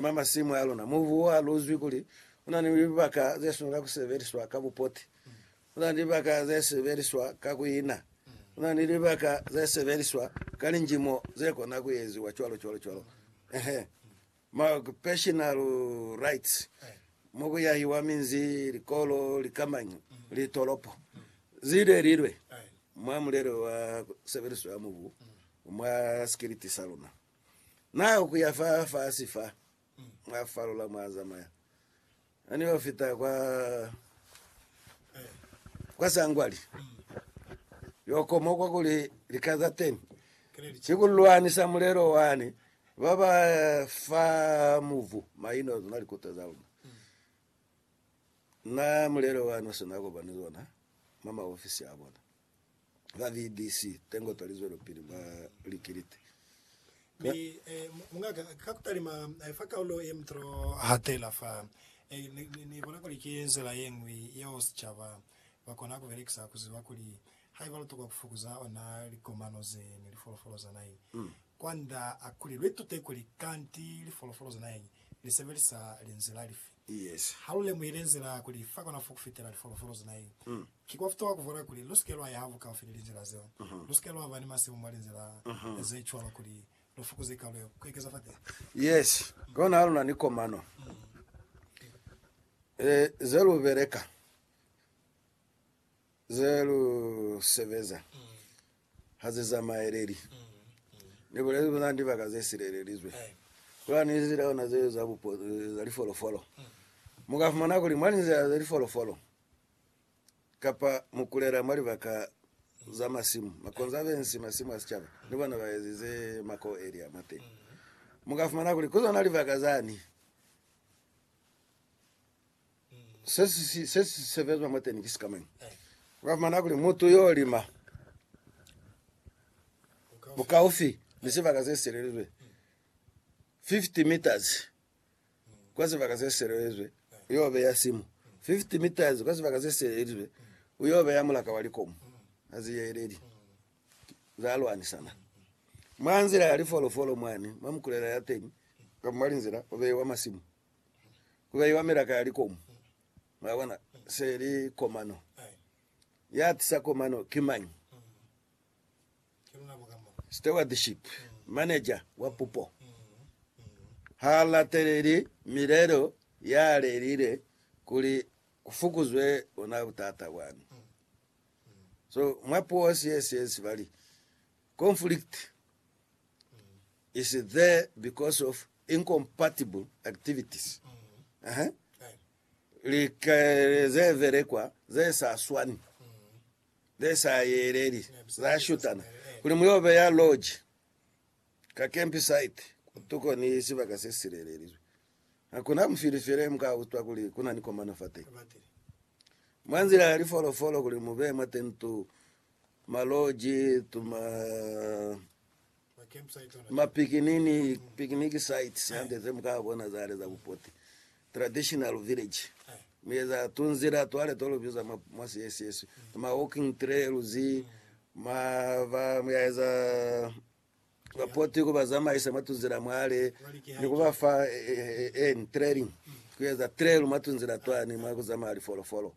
Mwa masimu a luna, mubu wa luzwi kuli u na ni libaka ze swanela ku sebeliswa ka bupoti. Ku na ni libaka ze sebeliswa ka ku ina. Ku na ni libaka ze sebeliswa ka linjimo ze kona ku eziwa cwalo cwalo cwalo. Ehe. Mwa occupational rights, mo ku yahiwa minzi, likolo, likamañi, litolopo, zi lelilwe mwa mulelo wa sebeliso ya mubu mwa sikiliti sa luna. Na yo kuya fa fasi fa, mwa falola mwa zamaya. Na ni yo fita kwa, kwa sangwali. Yo komo kwa kuli lika za teni. Si ku lwanisa mulelo wani, ba ba fa muvu, maino zona likuta za luna. Na mulelo wani sina kopani zona mwa maofisi a bona. ba VDC tengo twa lizwelopili mwa likiliti. Mi, eh, mungaka, ka kutalima fa kaulo ye mutolo hatela fa, eh, ni, ni, ni bona kuli ki nzila ye ñwi yeo sicaba ba kona ku belekisa ku ziba kuli haiba lu tokwa ku fukuza ona likomano ze ni lifolofolo za naheñi, kwand'a kuli lu itute kuli kanti lifolofolo za naheñi li sebelisa linzila lifi. Yes. Ha lu lemuhile nzila kuli fa kona fo ku fitela lifolofolo ze nai, ki kwa futohwa ku vwala kuli lu si ke lwa yaha bukaufi ni linzila zeo. Lu si ke lwa ba ni masimu mwa linzila ze cwalo kuli lu fukuze kalo yeo ku ekeza fateha. Yes. Kona ha lu na ni komano ze lu beleka, ze lu sebeza. ha ze zamaeleli. Ni bulezi kuli na ni libaka ze silelelizwe. Kula ni nzila yona ze za bupo za lifolofolo. Mu ka fumana kuli mwa linzila za lifolofolo kapa mu kulela mwa libaka za masimu, makonzavensi, masimu a sicaba, ni bona ba ezize mako elia mwa teñi. Mu ka fumana kuli ku zona libaka zani, se si sebezwa mwateni ki sikamañi? Ukafumana kuli mutu yo lima bukaufi ni sibaka se silelezwe 50 meters kwa sibaka se silelezwe, uyo beya simu 50 meters kwa sibaka se silelezwe, uyo beya mulaka wa likomu aziyeleli zalwanisana mwanzila ya lifolofolo mwani mwa mkulela yateni, ukafumalinzila ubewa masimu. ku ka iwa milaka ya likomu. Mwa bona? Se li komano. Ya tisa komano ki mañi? Stewardship, manager wa pupo. Ha lateleli milelo ya lelile kuli ku fukuzwe bona butata bwani. So, mwa puo, sies, sies, ba li, conflict, is there because of incompatible activities. Aha. Likele ze velekwa ze sa swani, ze sa yeleli, za shutana. Kuli mu yo beya lodge ka campsite kutuko ni sibaka se silelelizwe, hakuna mufili fele mu ka utwa kuli ku na ni komano fa teñi. Mwa nzila ya lifolofolo kuli mu beye mwa tento maloji, tuma, mapikinini, picnic sites hande ze muka bona zale za bupoti, traditional village, mi eza tunzila twale to lubiza mwa, mwa siesiswe, ma walking trails, ma, ba, muyaeza Ba poti ku ba zamaisa mwa tunzila mwale ni ku ba fa en training ku eza trail mwa tunzila twani mwa ku zamaya lifolofolo.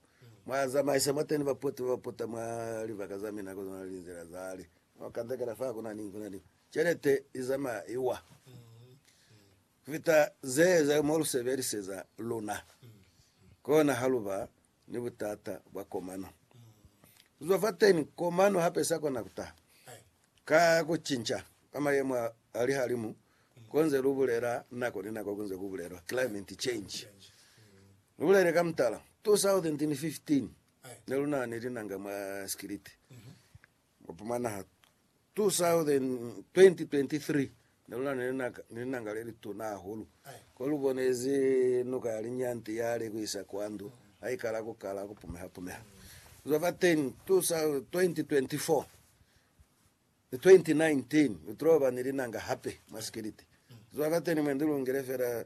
Mwa zamaisa mwateni ba poti ba ba pota mwa libaka za mina kono na linzila zale mwa kandekela fa ku na ni ku na ni celete i zamaya i wa ku fita ze za mo lu sebeliseza luna. Kona ha lu ba ni butata bwa komano. Ku zwa fateni, komano hape sa kona ku taha ka ku cinca kwa mayemo a lihalimu ko nze lu bulela nako ni nako ku nze ku bulelwa climate change. Lu bulele ka mutala, 2015 ne lu na ni linanga mwa sikiliti Mupumana ha 2023 neluna ni linanga lelituna hahulu, kolubonezi nuka ya linyanti yale kuisa kwa ndu haikala kukala kupumeha-pumeha. Kuzwa fa 2024 ni 2019 nitloba ni linanga hape mwa sikiliti. Kuzwa fateni mwe nilungile fela